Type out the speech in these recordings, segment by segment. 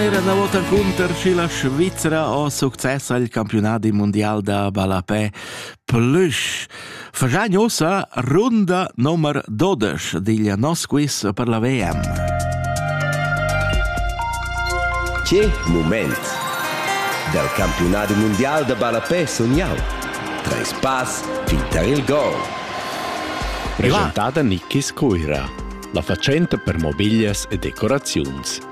Era una volta cunter și la Svizzera ho succes al campionat mondial da ballapè plush. Fagian ossa runda nummer 12 digl nos quiz per la VM. Che moment! Dal campionat mondial da ballapè sun jau. Treis pass fin tar il gol. Presentada Nikis Cuira, la fatschenta per mobiglias e decoraziuns.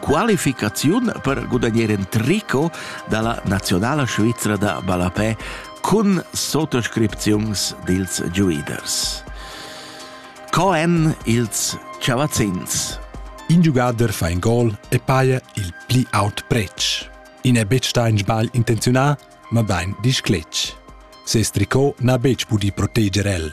qualificaziun per gudagnar in tricot dalla nazionala svizra da ballapè cun sottoscripziuns dils giuiders. Co èn ils chavazzins? In giugader fa in gol e paia il pli aut pretsch. In è betg stà in sbagl intenzionà, ma bain discletg. Ses tricot n'ha betg pudì proteger el.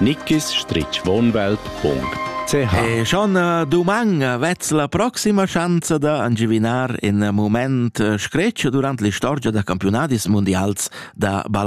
nickisstrichwohnwelt.ch E schon duman vez la proxima schanza da angivinar in moment scretsch durant l'istorgia da campionadis mundials da balla